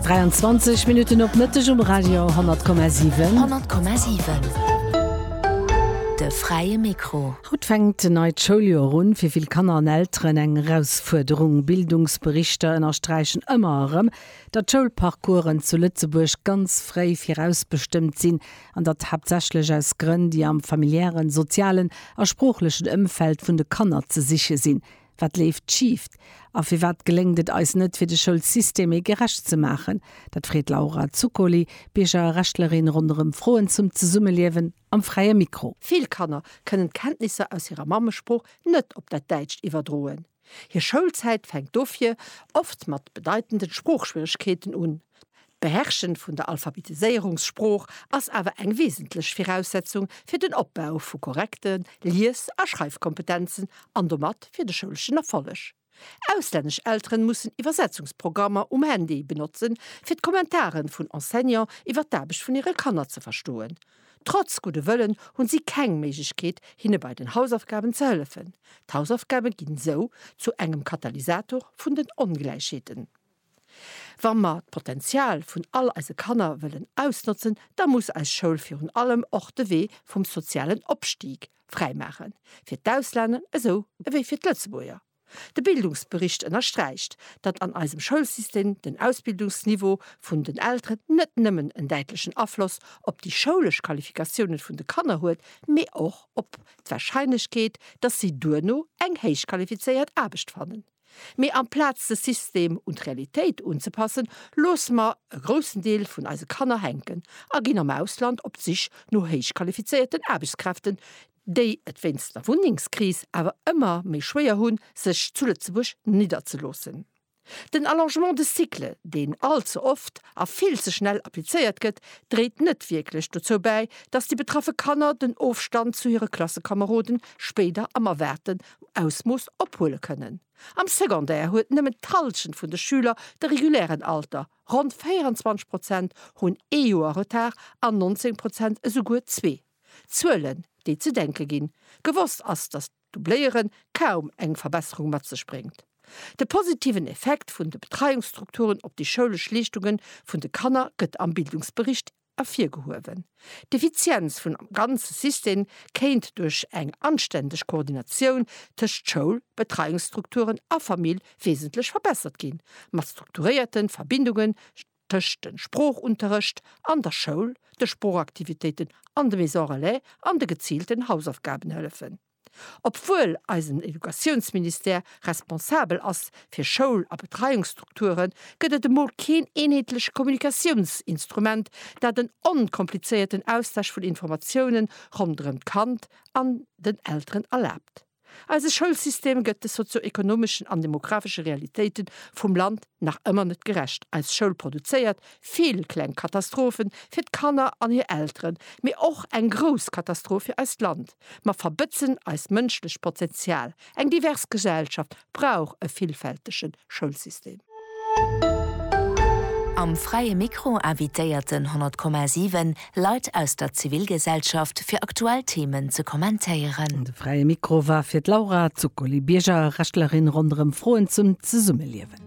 23 Minutten op Mëtteg um Radio 10,7. 10,7 De fräie Mikro. Haut fänkt en neit Schouljoer un. Fir vill Kanner an Elteren eng Erausfuerderung. Bildungsberichter ënnersträichen ëmmer erëm, datt d'Schoulparcoursen zu Lëtzebuerg ganz fréi virausbestëmmt sinn an datt haaptsächlech aus Grënn, déi am familiären, sozialen a sproochlechen Ëmfeld vun de Kanner ze siche sinn. Wat leeft schift a firwat geléngt et eis net fir de Schoulsystem ee gerecht ze maachen? Dat freet d'Laura Zuccoli d'Biergerrechtlerin ronderëm Froen zum Zesummeliewen am Fräie Mikro. Vill Kanner kënnen d'Kenntnisser aus hirer Mammesprooch net op dat Däitscht iwwerdroen. Hir Schoulzäit fänkt dofir oft mat bedeitenden Sproochschwieregkeeten un. D'Beherrschen vun der Alphabetiséierungssprooch ass awer eng wesentlech Viraussetzung fir den Opbau vu korrekte Lies a Schreifkompetenzen an domat fir de schouleschen Erfolleg. Auslännesch Elteren mussen Iwwersetzungsprogrammer um Handy benotzen, fir d'Kommentaren vun Enseignant iwwer d'Aarbecht vun hire Kanner ze verstoen. Trotz gudde Wëllen hunn si keng Méiglechkeet, hinne bei den Hausaufgaben ze hëllefen. D'Hausaufgaben ginn esou zu engem Katalysator vun den Ongläichheeten. Wa mer d'Potenzial vun all eise Kanner wëllen ausnotzen, da muss eis Schoul virun allem och de Wee vum sozialen Opstieg fräi maachen, fir d'Ausländer esou ewéi fir d'Lëtzebuerger. De Bildungsbericht ënnersträicht, datt an eisem Schoulsystem den Ausbildungsniveau vun den Elteren net nëmmen en däitlechen Afloss op déi schoulesch Qualifikatiounen vun de Kanner huet, mee och op d'Warscheinlechkeet, datt si duerno eng héichqualifizéiert Aarbecht fannen. Mee amplaz de System un d'Realitéit unzepassen, loosse mer e groussen Deel vun eise Kanner hänken a ginn am Ausland op d'Sich no héichqualifizéierten Aarbechtskräften, déi et wéinst der Wunnengskris awer ëmmer méi schwéier hunn, sech zu Lëtzebuerg nidderzeloossen. Den Allongement de cycle, deen all ze oft a vill ze schnell applizéiert gëtt, dréit net wierklech dozou bäi, dass déi betraffe Kanner den Ofstand zu hire Klassekameroden spéider am Erwaarten Ausmooss ophuele kënnen. Am Secondaire huet nëmmen d'Hallschent vun de Schüler de regulären Alter, ronn 24 Prozent hunn ee Joer Retard an 19 Prozent esouguer zwee. Zuelen, déi ze denke ginn. Gewosst ass, datt d'Dubléiere kaum eng Verbesserung mat sech bréngt. De positiven Effekt vun de Betreiungsstrukturen op déi schoulesch Leeschtunge vun de Kanner gëtt am Bildungsbericht ervirgehuewen. D'Effizienz vun ganze System kéint duerch eng anständeg Koordinatioun tëscht Schoul, Betreiungsstrukturen a Famill wesentlech verbessert ginn, mat strukturéierten Verbindungen tëscht den Sproochunterrecht an der Schoul, de Sproochaktivitéiten an de Maison Relais an de geziilten Hausaufgabenhëllefen. Obwuel eisen Educatiounsministère responsabel ass fir Schoul a Betreiungsstrukturen, gëtt et emol keen eenheetleche Kommunikatiounsinstrument, dat en onkomplizéierten Austausch vun Informatiounen ronderëm d'Kand an den Elteren erlaabt. Eise Schoulsystem gëtt de sozio-ekonomeschen an demografesche Realitéite vum Land nach ëmmer net gerecht. Eis Schoul produzéiert vill kleng Katastrophe fir d'Kanner an hir Elteren, mee och eng grouss Katastroph fir eist Land. Mer verbëtzen eist mënschlecht Potenzial. Eng divers Gesellschaft brauch e villfältege Schoulsystem. Am Fräie Mikro invitéierten 100,7 Leit aus der Zivilgesellschaft fir aktuell Themen ze kommentéieren. De Fräie Mikro war fir d'Laura Zuccoli, Bierger a Rechtlerin, ronderëm Froen zum Zesummeliewen.